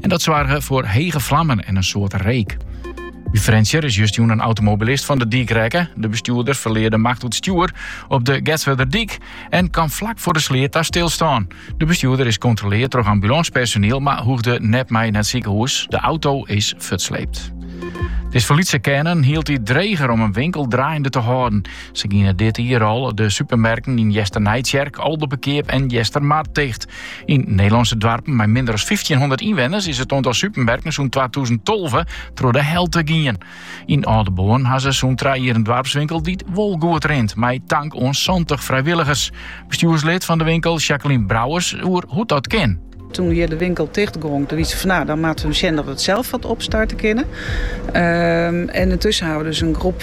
En dat soarge foar hege flammen en in soad reek. By Frjentsjer is justerjûn in automobilist fan de dyk rekke. De bestjoerder ferlear de macht oer it stjoer op de Getswerderdyk en kaam flak foar de sleat ta stilstân. De bestjoerder is kontroleard troch ambulânspersoniel, mar hoegde net mei nei it sikehûs. De auto is fuortsleept. It is foar lytse kearnen hieltyd dreger om in winkel draaiende te hâlden. Sa giene dit jier al de supermerken yn Easternijtsjerk, Aldeberkeap en Eastermar ticht. Yn Nederlânske doarpen mei minder as fyftjinhûndert ynwenners is it oantal supermerken sûnt twatûzen tolve troch de helte gien. Yn Aldeboarn ha se sûnt trije jier in doarpswinkel dy't wol goed rint, mei tank oan santich frijwilligers. Bestjoerslid fan de winkel, Jacqueline Brouwers, oer hoe't dat kin. Toen hjir de winkel ticht gong, toen wie sa fan no, dan moatte we sjen dat we it sels wat opstarte kinne. Ehm, en yntussen hawwe we dus in groep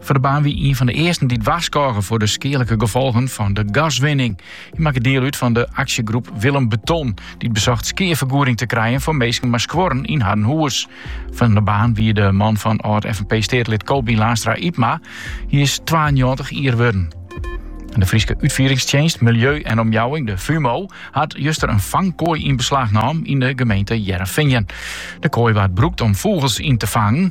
Van der Baan wie ien fan de earsten dy't warskôge foar de skealike gefolgen fan de gaswinning. Hy makke diel út fan de aksjegroep Willem Beton, dy't besocht skeafergoeding te krijen foar minsken mei skuorren yn harren hûs. Van der Baan wie de man fan âld-FNP-steatelid Kobien Laanstra Ypma. Hy is 92 jier wurden. En de Fryske Utfieringstsjinst Miljeu en Omjouwing, de FUMO, hat juster in fangkoai yn beslach nommen yn de gemeente Hearrenfean. De koai waard brûkt om fûgels yn te fangen.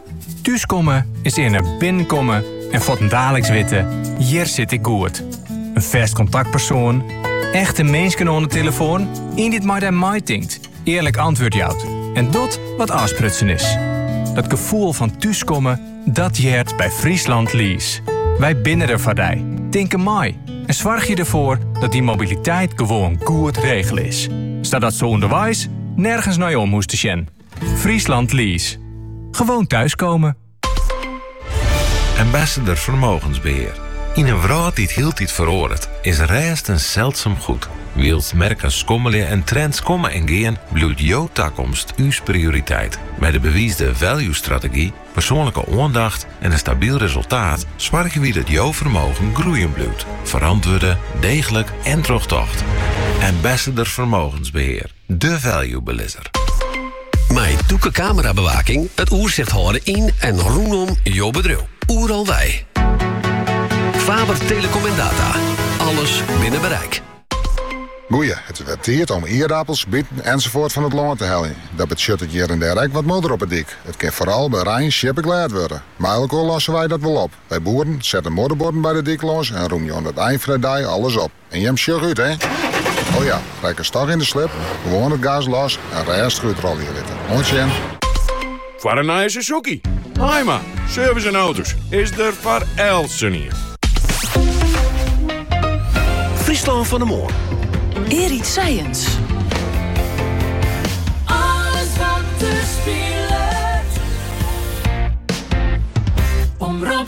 Thúskomme is earne binnenkomme en fuortendaliks witte, hjir sit ik goed. Ien fêst kontaktpersoan, echte minsken oan de telefoan, ien dy't mei dy meitinkt, earlik antwurd jout en docht wat ôfsprutsen is. Dat gefoel fan thúskomme, dat heart by Friesland Lease. Wy binne der foar dy, tinke mei en soargje derfoar dat dyn mobiliteit gewoan goed regele is, sadatst ûnderweis nergens nei om hoechst te sjen. Friesland Lease. Gewoon thuiskomen. Ambassador Vermogensbeheer. Yn in wrâld dy't hieltyd feroaret, is rêst in seldsum goed. Wylst merken skommelje en trends komme en gean, bliuwt jo takomst ús prioriteit. Mei de bewiisde value-strategy, persoanlike oandacht en in stabyl resultaat soargje wy dat jo fermogen groeien bliuwt, ferantwurde, deeglik en trochtocht. Ambassador Vermogensbeheer. De Value Belizzer. Mei tûke kamerabewaking it oersicht hâlde yn en rûnom jo bedriuw. Oeral wei. Faber Telecom en Data. Alles binnen bereik. Goeie, it is wer tiid om ierdappels, biten ensafoarts fan it lân te heljen. Dat betsjut it hjir en dêr ek wat modder op 'e dyk. It kin foaral by rein sjippeglêd wurde. Mei elkoar losse wy dat wol op. Wy boeren sette modderbuorden by de dyk lâns en rûmje oan it ein fan 'e dei alles op. En jim sjoch út, hè? O ja, ryd ik in dochs yn de slip, gewoan it gaas los en rêstich útrôlje litte. Moai sein! Foar in nije Suzuki. Haima, service yn auto's, is der foar eltsenien. Friesland fan 'e moarn. Erik Sijens. Alles wat der spilet. Omrop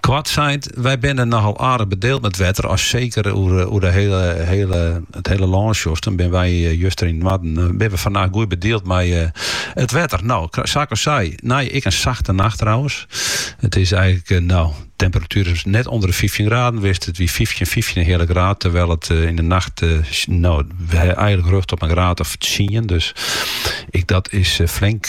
Koart sein, wy binne nochal aardich bedield mei wetter, as seker oer, eh, oer de hele, hele, it hele lân sjochste, dan binne wy eh, juster yn it noarden, eh, binne we fannacht goed bedield mei it eh, wetter. Nou, sa't ik al sei, nei ek in sachte nacht trouwens. It is eigenlik, no, temperatuer is net ûnder de 15 graden west. It wie 15, 15 en in heale graad. Terwyl it yn de nacht, no, eigenlik rjocht op in graad of 10. Dus ek, dat is flink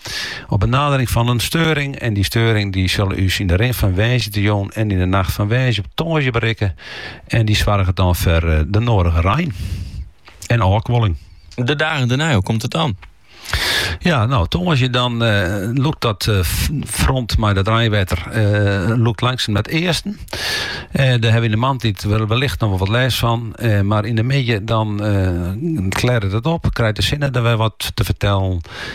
Op de nadering fan in steuring, en dy steuring dy sil ús yn de rin fan woansdeitejûn en yn de nacht fan woansdei op tongersdei berikke en dy soarget dan foar eh, de nodige rein en ôfkoeling. De dagen dêrnei, hoe komt it dan? Ja, no, tongersdei dan uh, lûkt dat uh, front mei dat reinwetter uh, lûkt langsum nei it easten. Uh, dêr hawwe we yn de moarntiid wellicht noch wol wat lêst fan. Uh, mar yn de middei dan uh, klearret it op, krijt de sinne wer wat te fertellen.